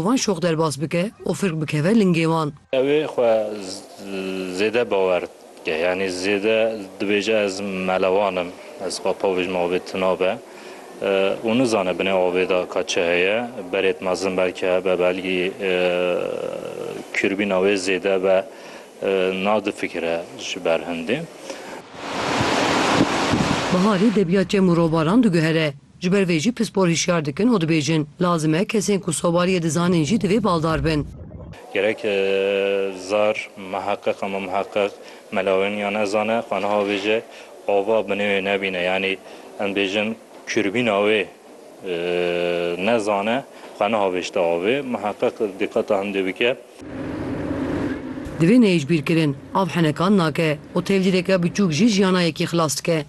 Van şox derbas bike û firk bikeve lingê wan. Ew ê xwe zêde bawer bike. Yanî zêde dibêje ez melewan im, ez xwe pavij me avê tina be û nizane binê avê de ka çi heye. Berêt mezin belkî hebe belkî kûrbîna wê zêde be na difikire ji ber hindê. Biharî debiya çem û robaran diguhere. Ji ber vê jî pispor hişyar dikin û dibêjin, Lazim e kesên ku sobariyê dizanin jî divê baldar bin. Gerek zar, miheqeq ama miheqeq melawên ya nezane xwe niha bêje ava binê wê nebîne yanî em bêjin kûrbîna wê nezane xwe niha bêjte avê miheqeq diqeta hindê bike. Divê neyê ji bîr kirin. Av henekan nake û tevlîreke biçûk jî jiyana yekî xilas dike.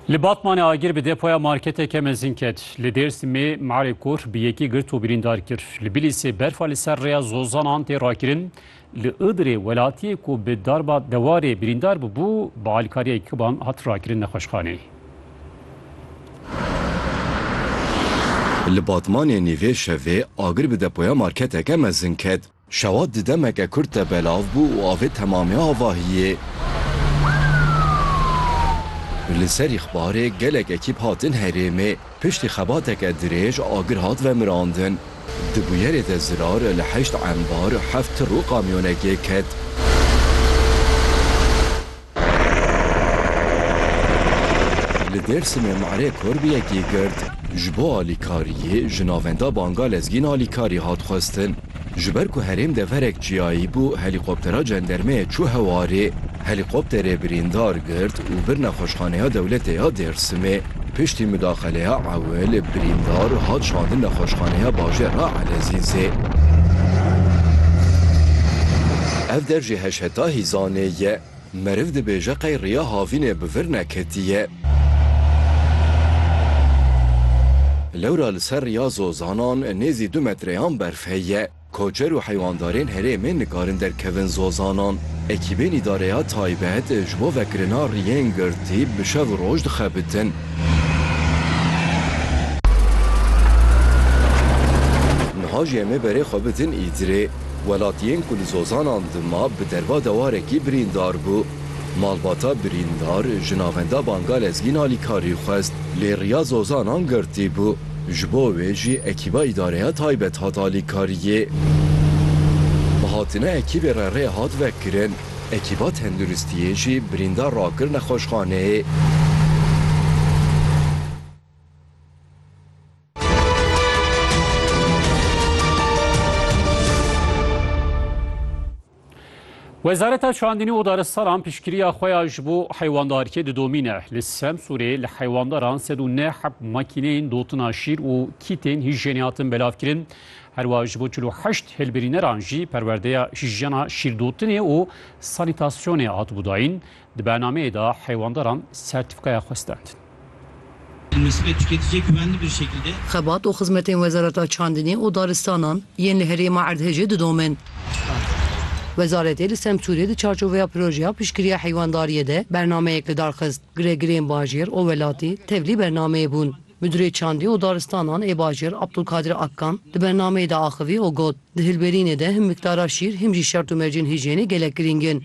Li Batmanê agir bi depoya marketeke mezin ket. Li Dêrsimê Marê Kor bi yekî girt û birîndar kir. Li Bilîsê berfa li ser rêya Zozanan tê rakirin. Li Idirê welatiyê ku bi darba dewarê birîndar bûbû bi alîkariya yekîban hat rakirin nexweşxaneyê. Li Batmanê nîvê şevê agir bi depoya marketeke mezin ket. Şewat di demeke kurt de belav bû û avê temamê avahiyê. Li ser îxbarê gelek ekîp hatin herêmê. Piştî xebateke dirêj agir hat vemirandin. Di bûyerê de zirar li heşt embar, heft tir û kamyonekê ket. Li Dêrsimê Mare Kor bi yekê girt. Ji bo alîkariyê ji navenda Banga Lezgîn alîkarî hat xwestin. Ji ber ku herêm deverek çiyayî bû helîkoptera cendermeyê çû hewarê. Helîkopterê birîndar girt û vir nexweşxaneya dewletê ya Dêrsimê. Piştî mudaxeleya ewil, birîndar hat şandin nexweşxaneya bajêra Elezîzê. Ev der jî heş heta hîzanê ye. Meriv dibêje qey riya havînê bi vir neketiye. Lewra li ser riya zozanan nêzî du metreyan berf heye. Koçer û heywandarên herêmê nikarin derkevin zozanan. Ekîbên îdareya taybet ji bo vekirina riyên girtî bi şev û roj dixebitin. Niha jî em ê berê xwe bidin Îdirê. Welatiyên ku li zozanan dima bi derva dewarekî birîndar bû. Malbata birîndar ji navenda Bangalezgîn alîkarî xwest lê riya zozanan girtî bû. Ji bo wê jî ekîba îdareya taybet hat alîkariyê. Bi hatina ekîbê re rê hat vekirin, ekîba tenduristiyê jî birîndar rakir nexweşxaneyê. Wezareta Çandinî û Daristalan piştgiriya xwe ya ji bo heywandarkê didomîne. Li Semsûrê li heywandaran sed û neh heb makîneyên dotina şîr û kîtên hîjyenê hatin belavkirin. Herwiha ji bo çil û heşt hilbirîneran jî perwerdeya hîjyena şîrdotinê û sanîtasyonê hatibû dayîn. Di bernameyê de heywandaran sertîfîkaya xwe stend. Xebat û xizmetên Wezareta Çandinê û Daristanan yên li herêma Erdhejê didomin. Wezaretê li Semsûrê di çarçoveya projeya piştgiriya heywandariyê de bernameyek li dar xist. Giregirên bajêr û welatî tevlî bernameyê bûn. Midurê Çandî û Daristanan ê Bajêr Abdulkadir Akkan di bernameyê de axivî û got, Di hilberînê de him miqdara şîr him jî şert û mercên hîjyênê gelek girîng in.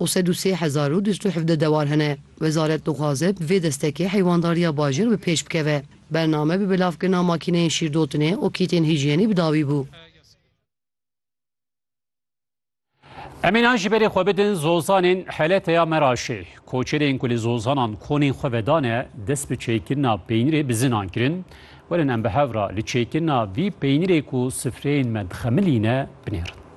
û sed û sê hezar û du sed û hevdeh dewar hene. Wezaret dixwaze bi vê destekê heywandarîya bajêr bi pêş bikeve. Bername bi belavkirina makîneyên şîrdotinê û kîtên hîjyênî bi dawî bû. Em ê nan ji berê xwe bidin zozanên Heleteya Meraşê. Koçerên ku li zozanan konên xwe vedane dest bi çêkirina peynirê bi zinan kirin. Werin em bi hev re li çêkirina vî peynirê ku sifreyên me dixemilîne binêrin.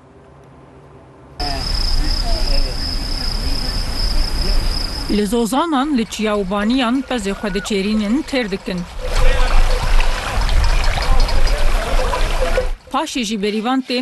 Li zozanan, li çiya û baniyan pezê xwe diçêrînin, têr dikin. Paşê jî berîvan tên.